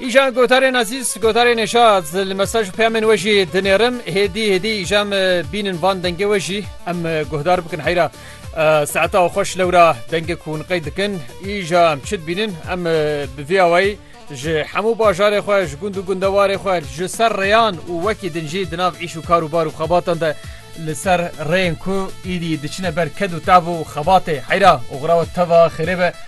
Îjan gotarên ezîz, gotarên neşat li mesaj û peyamên we jî dinêrim. Hêdî hêdî îjan bînin van dengê we jî em guhdar bikin heyra saeta û xweş lewra dengê ku hûn qey dikin îja em çi dibînin em bi vê awayî ji hemû bajarê xwe ji gund û gundewarê xwe ji ser rêyan û wekî din jî di nav îş û kar û bar û xebatan de li ser rêyên ku êdî diçine ber ked û tav û xebatê heyra oxira we teva xêrê be.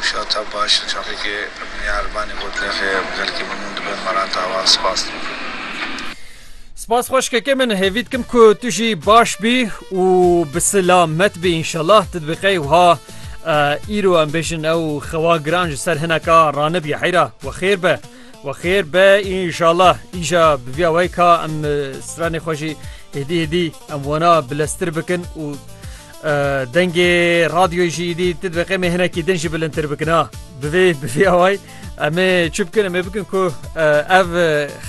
Wişata baş li çaxekê Miya Erbanî got, Lexê em gelkî mimûn dibe maran tawa spas dikim. Spas xweşkeke min hêvî dikim ku tu jî baş bî û bi sila met bî înşellah tu dibî qey wiha îro em bêjin ew xewa giran ji ser hineka ranibî heyra we xêr be we xêr be înşellah îja bi vîya weyka em stranê xwe jî hêdî hêdî em wana bileztir bikin û Dengê radyoyê jî dî ti dibe qemê hinekî din jî bilindtir bikina. Bivê bivê away em ê çi bikin em ê bikin ku ev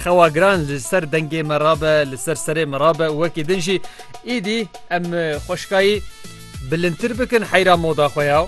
xewa giran li ser dengê me rabe li ser serê me rabe û wekî din jî îdî em xweşkayî bilindtir bikin heyra moda xwe ya.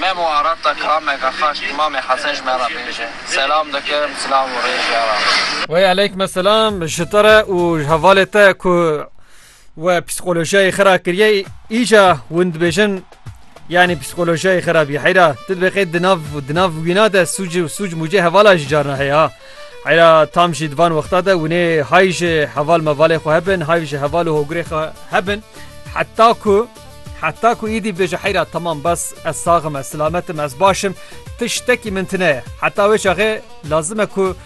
Memo Arap da kame vefa ji Îmamê Hesen ji me re bêje. Selam dikim, silav û rêz ya Rab. Wey eleykme selam ji te re û ji hevalê te ku we psîkolojiyayê xwe ra kiriye îca win dibêjin yanî psîkolojiyayê xwe ra bî heyra tu dibê qey di nav di nav wîna de sûc û sûc mûcê hevala jî carna heye ha heyra tam jî di van wexta de winê hay ji heval mevalê xwe hebin hay ji heval û hogirê xwe hebin heta ku Heta ku îdî bêje heyra temam bes ez saxim ez silametim ez başim ti ştekî min tine ye heta wê çaxê lazim e ku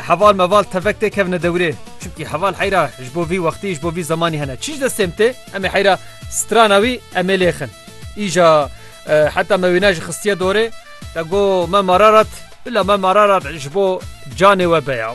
heval meval tevek tê kevne dewrê çimkî heval heyra ji bo vî wextî ji bo vî zemanî hene çî ji destêm tê em ê heyra strana wî em ê lêxin îja heta me wîne ji xistiye dorê te got me mararat bila me mararat ji bo canê we beya.